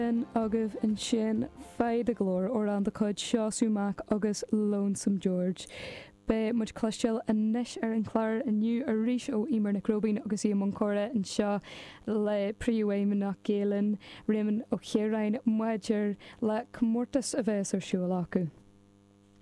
Sin agaibh ansin Faigh do Ghlór, amhrán de chuid Seosamh Mac agus Lonesome George. Beidh muid cloisteáil anois ar an chlár inniu arís ó Eimear Nic Róibín agus í i mbun comhrá anseo le Príomhfheidhmeannach Gael-Linn, Réamonn Ó Ciaráin, maidir le comórtas a bheas ar siúl acu.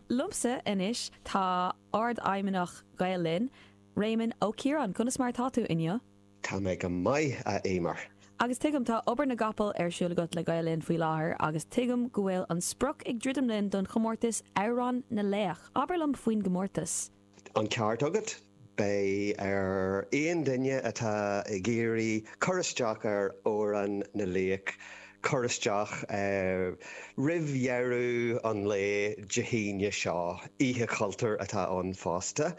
Liomsa anois tá Ardfheidhmeannach Gael-Linn, Réamonn Ó Ciaráin. Conas mar atá tú inniu? Tá mé go maith, a Éimear. Agus tuigim, tá obair na gcapall ar siúl agat le Gael Linn faoi láthair agus tuigim go bhfuil an sprioc ag druidim linn don chomórtas Amhrán na Laoch. Abair liom faoin gcomórtas. An ceart agat. Beidh ar aon duine atá ag iarraidh cur isteach ar Amhrán na Laoch cur isteach roimh dheireadh an lae Dé hAoine seo. Oíche Chultúir atá ann fosta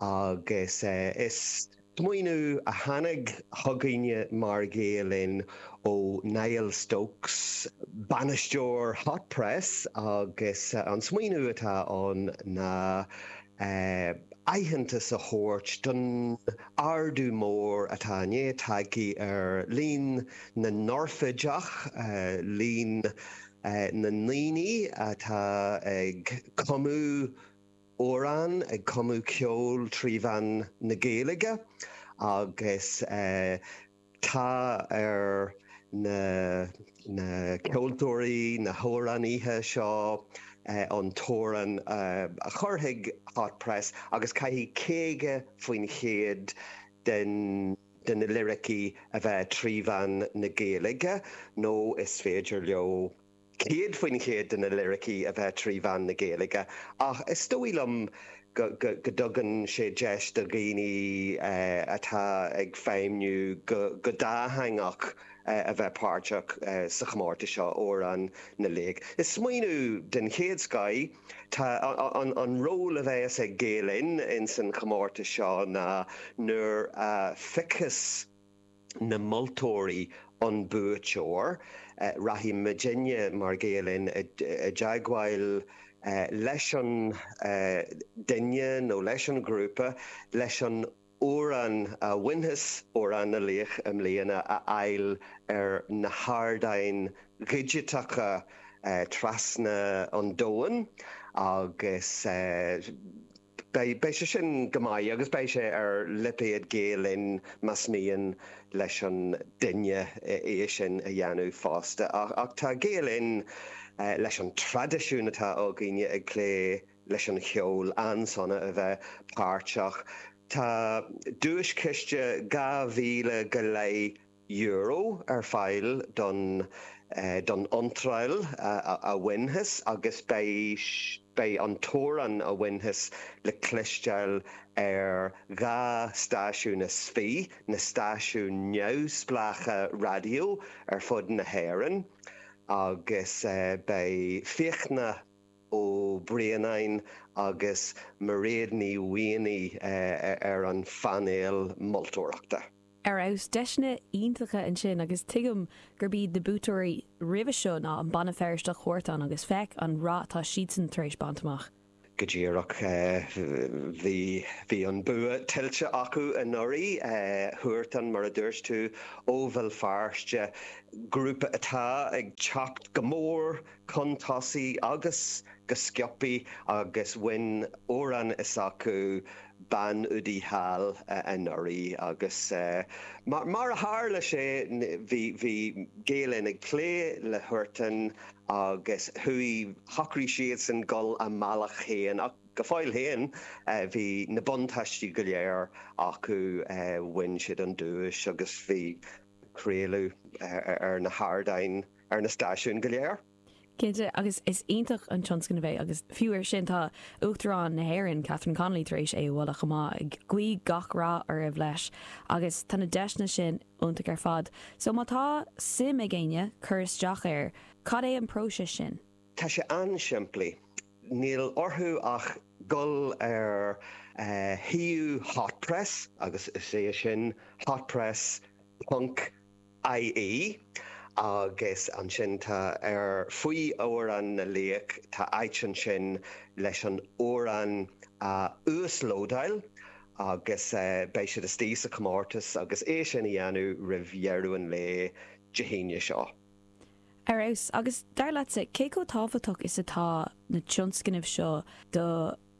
agus is. Smaoiniú a tháinig chugainne mar Ghael Linn ó Niall Stokes, bainisteoir Hot Press agus an smaoiniú atá ann ná aitheantas a thabhairt don ardú mór atá i ndiaidh teacht ar líon na n-oirfideach, líon na ndaoine atá ag cumadh amhrán ag cumadh ceoil trí mheán na Gaeilge agus tá ar na ceoltóirí, na hamhránaithe seo an t-amhrán a chur chuig Hot Press agus caithfidh 50% de na liricí a bheith trí mheán na Gaeilge nó is féidir leo céad faoin chéad de na liricí a bheith trí mheán na Gaeilge ach is dóigh liom go dtugann sé deis do dhaoine atá ag feidhmniú go dátheangach a bheith páirteach sa chomórtas seo, Amhrán na Laoch. Is smaoiniú den chéad scoth. Tá an ról a bheas ag Gael-Linn ins an chomórtas seo ná nuair a phiocfas. na moltóirí an buaiteoir. Rachaidh muidinne mar Gael Linn i dteagmháil leis an duine nó leis an ghrúpa leis an amhrán a bhainfeas Amhrán na Laoch i mbliana a fháil ar na hardáin dhigiteacha trasna an domhain agus. Beidh sé sin go maith agus beidh sé ar lipéad Gael Linn más mian leis an duine é sin a dhéanamh fosta. Ach tá Gael Linn, leis an traidisiún atá againne ag plé leis an cheol, an-sona a bheith páirteach. Tá duaischiste dhá mhíle go leith euro ar fáil don don iontráil a bhainfeas agus beidh an t-amhrán a bhainfeas le cloisteáil ar dhá stáisiún is fiche na stáisiúin neamhspleácha raidió ar fud na hÉireann agus beidh Fiachna Ó Braonáin agus Mairéad Ní Mhaonaigh ar an phainéal moltóireachta. ar fheabhas. Deiseanna iontacha ansin agus tuigim gurb iad na buaiteoirí roimhe seo ná an banna Feirsteach Huartan agus féach an rath atá siadsan tar éis baint amach. Go díreach bhí an bua tuillte acu anuraidh. Huartan, mar a dúirt tú, ó Bhéal Feirste, grúpa atá ag teacht go mór chun tosaigh agus go sciobthaí agus bhain amhrán s'acu Bean Udaí Thall anuraidh agus mar a tharla sé bhí Gael Linn ag plé le Huartan agus chuaigh, shocraigh siadsan dul a mbealach féin ach go fóill féin bhí na buntáistí go léir acu, bhain siad an duais agus bhí craoladh ar na hardáin ar na stáisiúin go léir. Cinnte, agus is iontach an tionscnamh é, agus fiú air sin, tá Uachtarán na hÉireann, Catherine Connolly, tar éis é a mholadh chomh maith, ag guí gach rath oraibh leis, agus tá na deiseanna sin iontach ar fad. So, má tá suim ag éinne cur isteach air, cad é an próiseas sin? Tá sé an-simplí. Níl orthu ach dul ar shuíomh Hot Press, agus is é sin, hotpress ponc IE, agus ansin tá ar faoi Amhrán na Laoch, tá áit ansin leis an amhrán a uaslódáil agus beidh siad istigh sa chomórtas agus é sin a dhéanamh roimh dheireadh an lae Dé hAoine seo. Ar fheabhas, agus dar leatsa, cé chomh tábhachtach is atá na tionscnaimh seo do.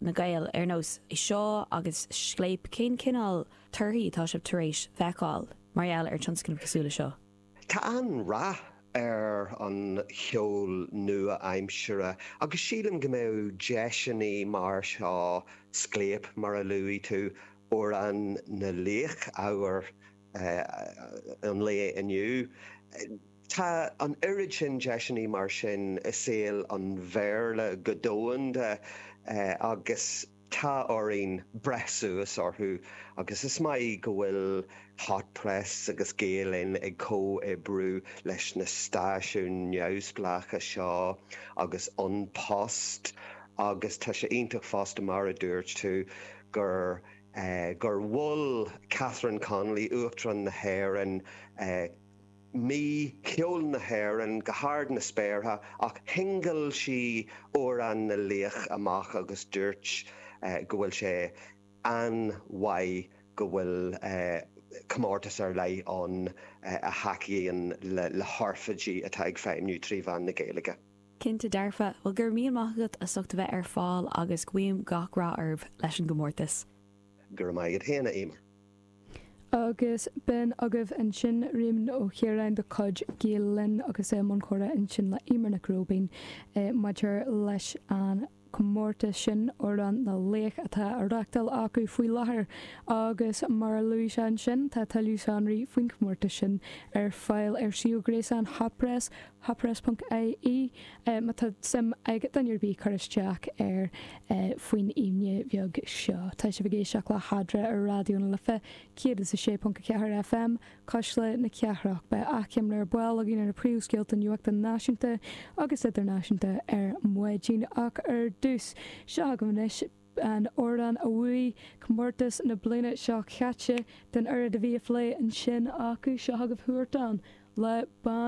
na Gaeil ar nós é seo agus Scléip, cén cineál torthaí atá sibh tar éis feiceáil mar gheall ar tionscnaimh cosúil le seo? Tá an-rath ar an cheol nua-aimseartha agus sílim go mbeadh deiseanna mar seo, Scléip, mar a luaigh tú, Amhrán na Laoch, ábhar an lae inniu. Tá an oiread sin deiseanna mar sin i saol an Bhéarla go domhanda agus tá orainn breith suas orthu agus is maith go bhfuil Hot Press agus Gael Linn ag comhoibriú leis na stáisiúin neamhspleácha seo agus An Post agus tá sé iontach fosta mar a dúirt tú gur gur mhol Catherine Connolly, Uachtarán na hÉireann, mí cheol na hÉireann go hard na spéartha ach shingil sí Amhrán na Laoch amach agus dúirt go bhfuil sé an-mhaith go bhfuil comórtas ar leith ann a thacaíonn le hoirfidigh atá ag feidhmniú trí mheán na Gaeilge. Cinnte dearfa. Bhuel, go raibh míle maith agat as ucht a bheith ar fáil agus guím gach rath oraibh leis an gcomórtas. Go raibh maith agat féin, a Emer. Agus b'in agaibh ansin, Réamonn Ó Ciaráin de chuid Gael Linn agus é i mbun comhrá ansin le Emer Nic Róibín maidir leis an comórtas sin Amhrán na Laoch atá á reáchtáil acu faoi láthair agus mar a luaigh sé ansin tá tuilleadh sonraí faoin chomórtas sin ar fáil ar suíomh gréasáin Hot Press, hotpress.ie, má tá suim ag duine ar bith cur isteach air faoin Aoine bheag seo. Tá sibh ag éisteacht le hEadra ar Raidió na Life 106.4 FM. Cuisle na Cathrach, beidh achoimre ar ball againn ar na príomhscéalta nuachta náisiúnta agus idirnáisiúnta ar maidin ach ar dtús. Seo agaibh anois an amhrán a bhuaigh comórtas na bliana seo caite den oiread a bhí á phlé ansin acu, seo agaibh Huartan le Bean.